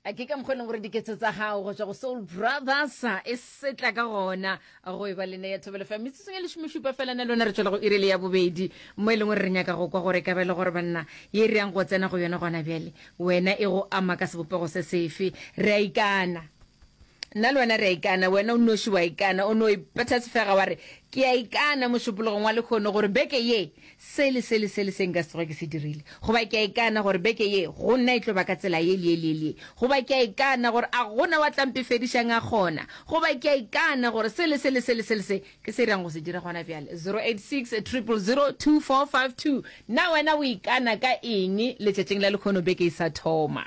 a ke ka mokgwa e leng gore diketso tsa gago go tswa go soul brothers e setla ka gona go e ba le ne ya thobelo fa metsotsong e lesomešupa fela na lona re tswela go irele ya bobedi mo e leng gore re nyaka go kwa gore ka bele gore banna ye re yang go tsena go yone gona bjale wena e go ama ka sebopego se sefe re a ikana Nna le wena re a ikana, wena o nnoši o a ikana, o no ipetha sefega wa re, Ke a ikana mošupologong wa lekgono gore beke ye se le se le se le se nka se tsoge ke se dirile. Goba ke a ikana gore beke ye go nna e tlo ba ka tsela ye le ye le ye le ye. Goba ke a ikana gore a go na wa tla mpefedišang a kgona. Goba ke a ikana gore se le se le se le se le se ke se reng go se dira gona bjale. 0860002452 Na wena o ikana ka eng letšatšing la lekgono beke e sa thoma?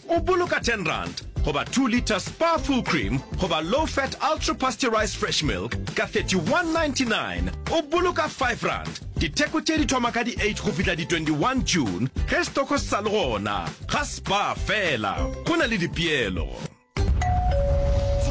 O boloka ten rand goba two litre Spa Full Cream goba Low Fat Ultra Pasteurized Fresh Milk ka thirty-one ninety-nine. O boloka five rand. Ditheko tše di thoma ka di eight go fihla di twenty-one June ge stoko se sa le gona. Ga Spa fela, go na le dipeelo.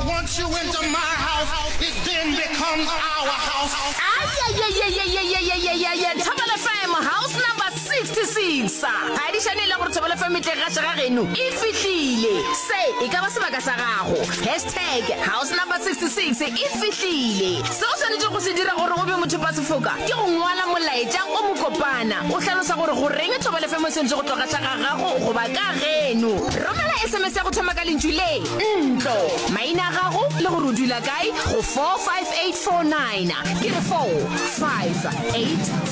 Once you enter my house, it then becomes our house. Ayayayayayayayayaya Thobela FM House Number 66 ga e dišane e le gore thobelo famitleg ga šega geno e fihlile se e ka ba sebaka sa gago hashtag house number 66 e fihlile se o swanetše go se dira gore o be mothopa sefoka ke go ngwala molaetša o mokopana o hlalosa gore go reng thobelo femo e swanetše go tloga tla ga gago goba ka geno romela sms ya go thoma ka lentšu le ntlo maina a gago le gore o dula kae go 45849 ke re 458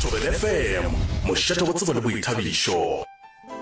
Thobelefm, mošate go tsebo le boithabišo.